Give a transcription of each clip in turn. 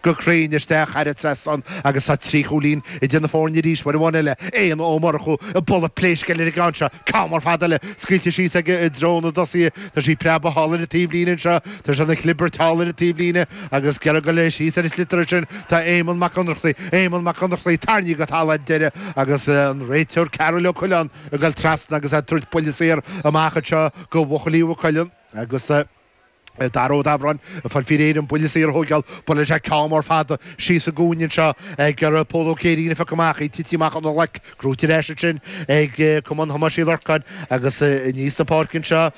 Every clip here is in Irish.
go cruinn isteach thar an trasnán agus tá trí chúilín idir na foirne arís, uair amháin eile, Éanna Ó Murchú ag bualadh pléisc ar an gceann seo, ceann mór fada eile scaoilte síos aige i dtreo na dtosaithe, tá sí ag preabadh thall ar an taobhlíne anseo, tá sé ina chlibirt thall ar an taobhlíne agus ag iarraidh dul síos ar an sliotar ansin, tá Éamonn Mac Ionnrachtaigh, Éamonn Mac Ionnrachtaigh, tarraingthe go talamh ar deireadh agus an réiteoir Karol Ó Coileáin ag dul trasna agus ag tabhairt buille saor amach anseo go bhuachaillí Mhaigh Cuilinn agus. Dara Ó Dabhráin, fuair faoi réir an buille saor a thógáil. Buaileann sé ceann mór fada síos sa gcúinne anseo ag iarraidh Pól Ó Céirín a phiocadh amach, ag titim amach óna ghlac. Gnóthaithe ar ais ansin ag Cumann Thomáis Uí Lorcáin agus aníos an pháirc anseo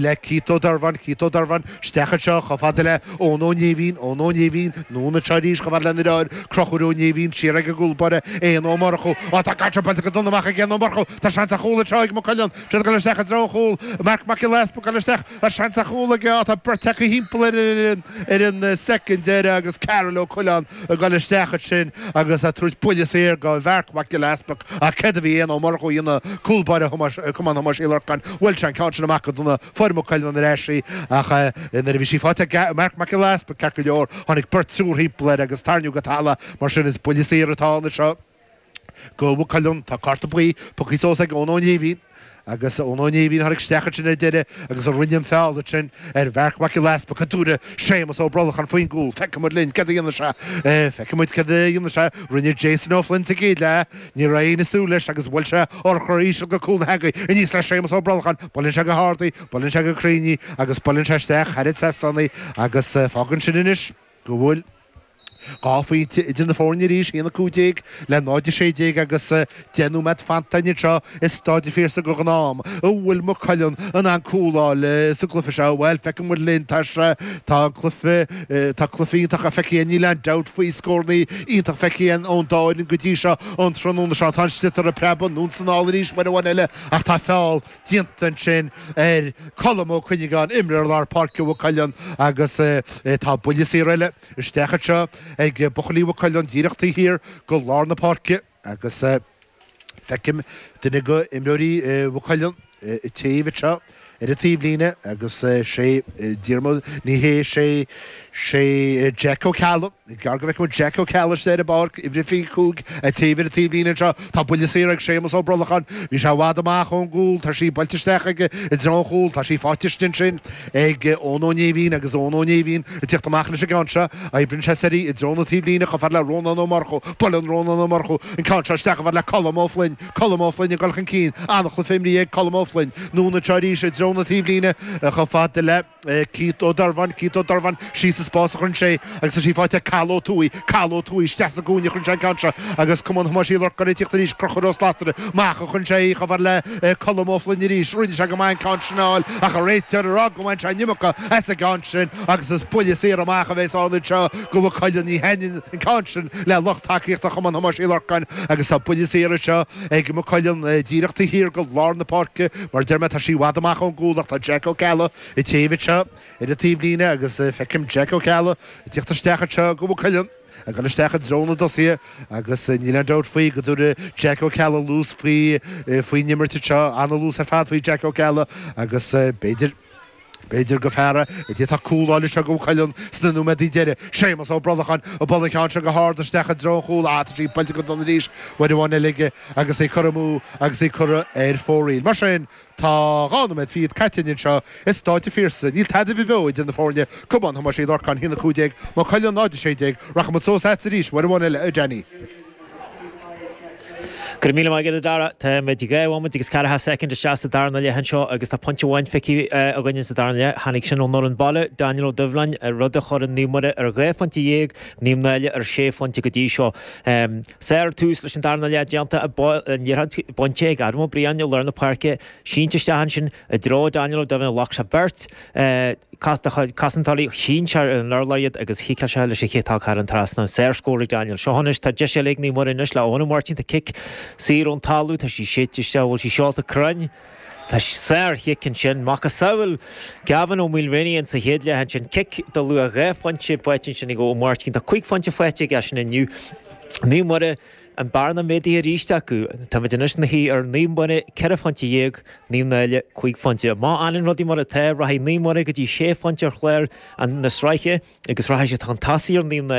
le Keith Ó Dorbháin, Keith Ó Dorbháin, isteach anseo chomh fada le Eoin Ó Néimhín, Eoin Ó Néimhín, anonn anseo arís chomh fada lena dheartháir, Conchúr Ó Néimhín, siar ag an gcúl báire, Éanna Ó Murchú. Ó, tá an ceann sin buailte go dona amach ag Éanna Ó Murchú. Tá seans ar chúl anseo ag Maigh Cuilinn, siad ag dul isteach i dtreo an chúil, Marc Mac Giolla Easpaig ag dul isteach, An-seans ar chúl aige ach tá beirt acu thimpeall air ar an soicind deiridh agus Karol Ó Coileáin ag dul isteach ansin agus ag tabhairt buille saor go Mharc Mac Giolla Easpaig ach céard a bhí Éanna Ó Murchú a dhéanamh, cúl báire Chumann Thomáis Uí Lorcáin, bhuail sé an ceann sin amach go dona, fuair Maigh Cuilinn ar ais í ach nuair a bhí sí faighte ag Marc Mac Giolla Easpaig, ceart go leor, tháinig beirt triúr thimpeall air agus tarraingíodh go talamh. Mar sin is buille saor atá ann anseo. go Mhaigh Cuilinn. Tá cárta buí pioctha suas ag Eoin Ó Néimhín. Agus Eoin Ó Néimhín a tháinig isteach ansin ar deireadh agus a rinne an feall ansin ar Mharc Mac Giolla Easpaig, an dtabharfaidh Séamas Ó Brolacháin faoin gcúl. Feicfimid linn céard a dhéanfaidh sé. Feicfimid céard a dhéanfaidh sé. Rinne Jason Ó Floinn sa gcéad leath. Ní raibh éinne ag súil leis agus bhuail sé urchar íseal go cúl na heangaí aníos le Séamas Ó Brolacháin. Buaileann sé go h-ard í, buaileann sé go cruinn í agus buaileann sé isteach thar an tseastán í agus fágann sin anois, go bhfuil dhá phointe idir na foirne arís, 1, 15 le 0, 16, agus deich nóiméad fanta anseo i Stáid an Phiarsaigh a ghnám an bhfuil Maigh Cuilinn in ann cúl a fháil sa gcluiche seo? Bhuel, feicfidh muid linn tá sé tá an cluiche tá cluiche iontach a feicthe níl aon dabht faoi scórannaí iontach feicthe ón dá fhoireann go dtí seo an tráthnóna seo tá an sliotar ag preabadh anonn is anall arís uair amháin eile ach tá feall déanta ansin ar Colm Ó Cuinneagáin, imreoir lár páirce Mhaigh Cuilinn agus tá buille saor eile isteach anseo ag buachaillí Mhaigh Cuilinn díreach taobh thiar go lár na páirce agus feicim duine go imreoirí Mhaigh Cuilinn ag téamh anseo ar an taobhlíne agus sé Diarmuid, ní hé, sé Jack Ó Ceallaigh. Is gearr go bhfeicfimid Jack Ó Ceallaigh ar an bpáirc uimhir a 25 ag téamh ar an taobhlíne anseo. Tá buille saor ag Séamus Ó Brolacháin. Bhí sé i bhfad amach ón gcúl. Tá sí buailte isteach aige i dtreo an chúil. Tá sí faighte ansin ag Eoin Ó Néimhín agus Eoin Ó Néimhín ag teacht amach leis an gceann seo. Oibríonn sé soir í i dtreo na taobhlíne chomh fada le Rónán Ó Murchú. Buaileann Rónán Ó Murchú an ceann seo isteach chomh fada le Colm Ó Floinn. Colm Ó Floinn ag dul chun cinn. An-chluiche imrithe ag Colm Ó Floinn. Anonn anseo arís i dtreo na taobhlíne chomh fada le. Keith Ó Doirbheáin, Keith Ó Doirbheáin, Síos sa spás a chuireann sé agus tá sí faighte ag Cathal Ó Tuathaigh, Cathal Ó Tuathaigh, Isteach sa gcúinne a chuireann sé an ceann seo agus Cumann Thomáis Uí Lorcáin ag tíocht arís, Crochúr Ó Slatara, Mach a chuireann sé i gcomhar le Colm Ó Floinn arís, Rinne sé go maith an ceann sin a fháil ach an réiteoir ag rá go mbain sé an iomarca as an gceann sin agus is buille saor amach a bhéas ann anseo go Maigh Cuilinn. Ní thaitníonn an ceann sin le lucht tacaíochta Chumann Thomáis Uí Lorcáin agus tá buille saor anseo ag Maigh Cuilinn, díreach taobh thiar de lár na páirce. Mar a deir mé, tá sí i bhfad amach ón gcúl ach tá Jeaic Ó Ceallaigh ag téamh anseo ar an taobhlíne agus feicim Jeaic Ó Ceallaigh ag tíocht isteach anseo go Maigh Cuilinn, ag dul isteach i dtreo na dtosaithe agus níl aon dabht faoi go dtabharfaidh Jeaic Ó Ceallaigh luas faoin imirt anseo, an-luas ar fad faoi Jeaic Ó Ceallaigh agus b'fhéidir. B'fhéidir gur fear é a d'fhéadfadh cúl a fháil anseo go Maigh Cuilinn sna nóiméadaí deiridh, Séamus Ó Brolacháin, a bhuail an ceann seo go hard isteach i dtreo an chúil ach tá sí buailte go dona arís, uair amháin eile aige agus é curtha amú agus é curtha ar fóraoil. Mar sin, tá dhá nóiméad fichead caite againn anseo i Stáid an Phiarsaigh. Níl tada ar bith beo idir na foirne, Cumann Thomáis Uí Lorcáin, 1, 15, Maigh Cuilinn 0, 16. Rachaimid suas agatsa arís uair amháin eile, a Danny. Go raibh míle maith agat, a Dara. Táimid dhá bhomaite agus ceathracha soicind isteach sa darna leath anseo agus tá pointe amháin feicthe againn sa darna leath. Tháinig sin ón fhoireann baile, Daniel Ó Doibhleáin, rud a chuireann Naomh Muire ar dhá phointe dhéag, Naomh Náille ar sé phointe go dtí seo. Sárthús leis an darna leath déanta acu, an liathróid bainte ag Adam Ó Briain i lár na páirce, sínte isteach ansin, I dtreo Daniel Ó Doibhleáin ghlac sé beirt cosantóirí, shín sé ar an urlár iad agus chiceáil sé leis an chiotóg thar an trasnán. Sárscór ag Daniel. Seo anois, tá deis eile ag Naomh Muire anois le Eoin Ó Máirtín. Tá cic saor ón talamh, tá sí séidte isteach, an bhfuil sí seolta cruinn? Tá, sárchic ansin, macasamhail Gavin Ó Maoilréanaigh in sa chéad leath ansin. Cic de luach dhá phointe faighte ansin ag Ó Máirtín. Tá cúig phointe faighte aige sin inniu. Naomh Muire. An bearna méadaithe arís acu. Táimid anois ina shuí ar Naomh Muire, ceithre phointe dhéag, Naomh Náille, cúig phointe. Má fhanann rudaí mar atá, rachaidh Naomh Muire go dtí sé phointe ar chlár na sraithe agus rachaidh siad chun tosaigh ar Naomh Náille.